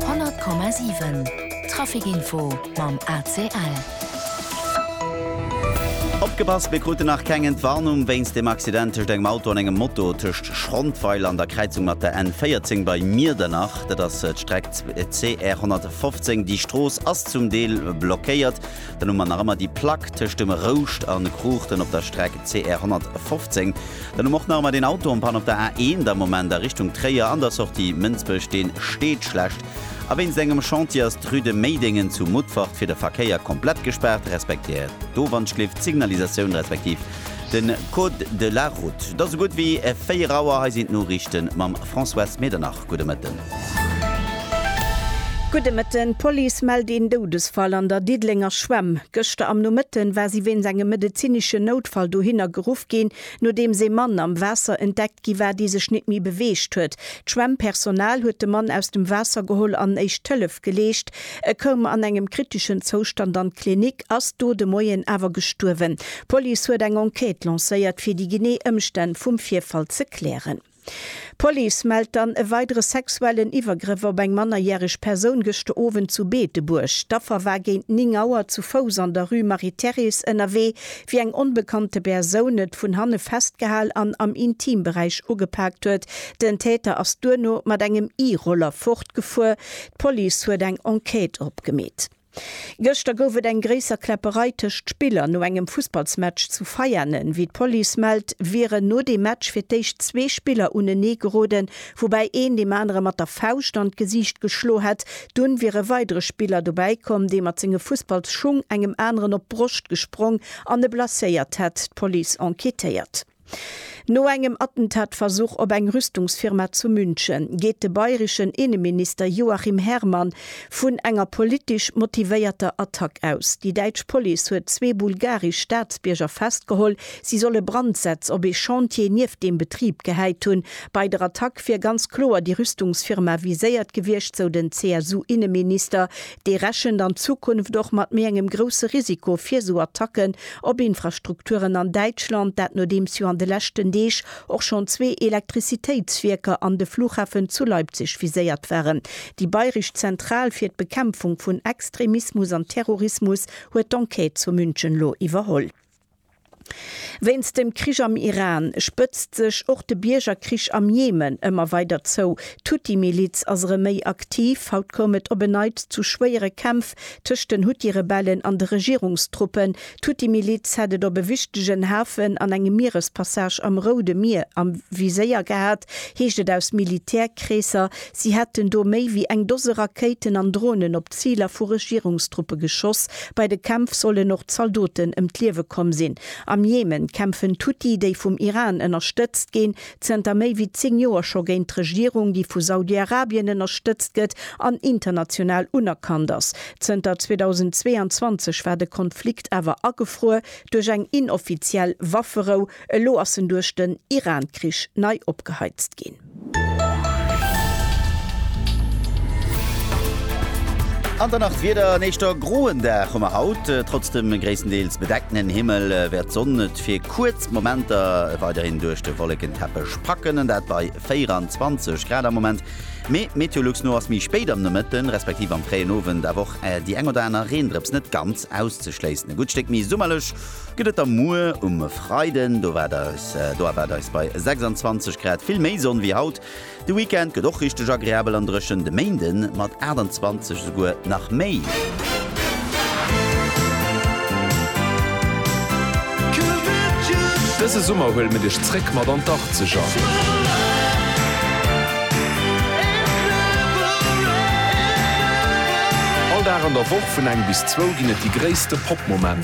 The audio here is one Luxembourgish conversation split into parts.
100,7 Traficinfo mam ACL. Opgepasst, mir kruten nach keng Entwarnung wéinst dem Accident tëscht engem Auto an engem Moto tëscht Schrondweiler an der Kräizung mat der N 14 bei Miedernach. Dat ass d'Streck CR 115. Déi Strooss ass zum Deel blockéiert. Dann hu mer nach ëmmer déi Plack tëscht dem Rouscht a Cruchten op der Streck CR 115. Dann hu mer och nach ëmmer deen Auto en panne op der A 1 am Moment a Richtung Tréier an der Sortie Mënsbech. Dee steet schlecht a wéinst engem Chantier ass d'Rue de Méidéngen zu Mutfert fir de Verkéier komplett gespaart, respektéiert d'Owanschliff d'Signalisatioun respektiv de Code de la route. Et ass esou gutt wéi 4 Auer. Hei sinn d'Noriichte mam Françoise Medernach. Gudde Mëtten. Gudde Mëtten. D'Police mellt een Doudesfall an der Diddelenger Schwämm. Gëschter am Nomëtten war si wéinst engem medezineschen Noutfall dohinner geruff ginn, nodeems ee Mann am Waasser entdeckt gi war, dee sech net méi beweegt huet. D'Schwämmpersonal huet de Mann aus dem Waasser geholl an éischt Hëllef geleescht. E koum an engem kriteschen Zoustand an d'Klinik, ass do de Moien awer gestuerwen. D'Police huet eng Enquête lancéiert, fir déi genee Ëmstänn vum Virfall ze klären. D'Police mellt dann e weidere sexuellen Iwwergrëff op eng mannerjäreg Persoun gëschter Owend zu Beetebuerg. D'Affer war géint 9 Auer zu Fouss an der Rue Marie-Thérèse ënnerwee, wéi eng onbekannte Persoun et vun hanne festgehal an am Intimberäich ugepaakt huet. Den Täter ass duerno mat engem E-Roller fortgefuer. D'Police huet eng Enquête opgemeet. Gëschter gouf et eng gréisser Kläpperei tëscht Spiller no engem Fussballsmatch zu Veianen. Wéi d'Police mellt, wieren no deem Match fir d'éischt zwee Spiller unenee geroden, woubäi een deem anere mat der Fauscht an d'Gesiicht geschlo hätt. Dunn wier e weidere Spiller dobäi komm, dee mat senge Fussballsschung engem aneren op d'Broscht gesprong an e blesséiert hätt. D'Police enquêtéiert. No engem Attentatversuch op eng Rüstungsfirma zu München, geet de bayreschen Inneminister Joachim Herrmann vun enger politesch motivéierter Attack aus. Déi däitsch Police huet zwee bulgaresch Staatsbierger festgeholl, si solle Brandsätz op ee Chantier nieft deem Betrib gehäit hunn. Bei der Attack wier ganz kloer déi Rüstungsfirma viséiert gewiescht, sou den CSU-Inneminister. Dee rechent an Zukunft och mat méi engem grousse Risiko fir esou Attacken op Infrastrukturen an Däitschland, dat nodeems jo an de leschten Deeg och schonn zwee Elektrizitéitswierker an de Flughafen zu Leipzig viséiert waren. Déi bayresch Zentral fir d'Bekämpfung vun Extremismus an Terrorismus huet d'Enquête zu München elo iwwerholl. Wéinst dem Krich am Iran spëtzt sech och de Biergerkrich am Jemen ëmmer weider zou. D'Huthi-Miliz ass erëm méi aktiv. Haut koum et op en Neits zu schwéiere Kämpf tëscht den Huthi-Rebellen an de Regierungstruppen. D'Huthi-Miliz hätt et op e wichtegen Hafen an engem Mierespassage am Roude Mier am Viséier gehat, heescht et aus Militärkreesser. Si hätten do méi wéi eng Dose Rakéiten an Dronen op Ziler vu Regierungstruppe geschoss. Bei de Kämpf sollen och Zaldoten ëm d'Liewe komm sinn. Am Jemen kämpfen d'Huthi, déi vum Iran ënnerstëtzt ginn, zënter méi wéi 10 Joer scho géint d'Regierung, déi vu Saudi-Arabien ënnerstëtzt gëtt an international unerkannt ass. Zënter 2022 war de Konflikt awer agefruer duerch eng inoffiziell Wafferou. Elo ass en duerch den Iran-Krich nei opgeheizt ginn. An der Nacht wieder en éischter groen Dag hu mer haut. Trotz dem gréisstendeels bedeckten Himmel wäert d'Sonn et fir kuerz Momenter weiderhin duerch de Wollekenteppech packen, an dat bei 24 Grad am Moment. Mee Meteolux no ass méi spéit am Nomëtten, respektiv am fréien Owend awer och déi eng oder aner Reendrëps net ganz auszeschléissen. E gutt Stéck méi summerlech Gëtt et der muer um Freiden, do waert eis do erwaart eis bei 26 Grad vill méi Sonn wéi haut. De Weekend gëtt och richteg agreabel an dréchen, de Méinde mat 28 esouguer nach méi. Dëse Summer huele mir dech zréck mat an d'Achtzeger. All Dag an der Woch vun eng bis zwou ginn et déi gréisste Pop-Momenter.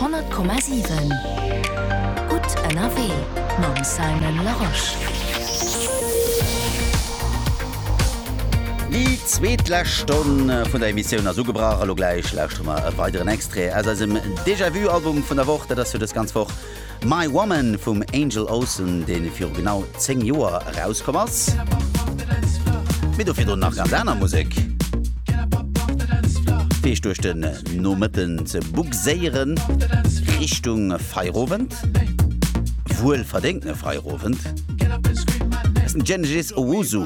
Honnert Komma siwen, gutt ënnerwee mam Simon Larosche. Déi zweet lescht Stonn vun der Emissioun ass ugebrach a lo gläich lauschteren mer e weideren Extrait aus eisem Déjà-Vu-Album vun der Woch. Dat ass jo dës ganz Woch. My Woman vum Angel Olsen, dee viru genau 10 Joer erauskomm ass. Mee dofir drun nach ganz aner Musek, fir Iech duerch den Nomëtten ze bugséieren, Richtung Feierowend, wuel verdéngtene Feierowend. Genesis Owusu.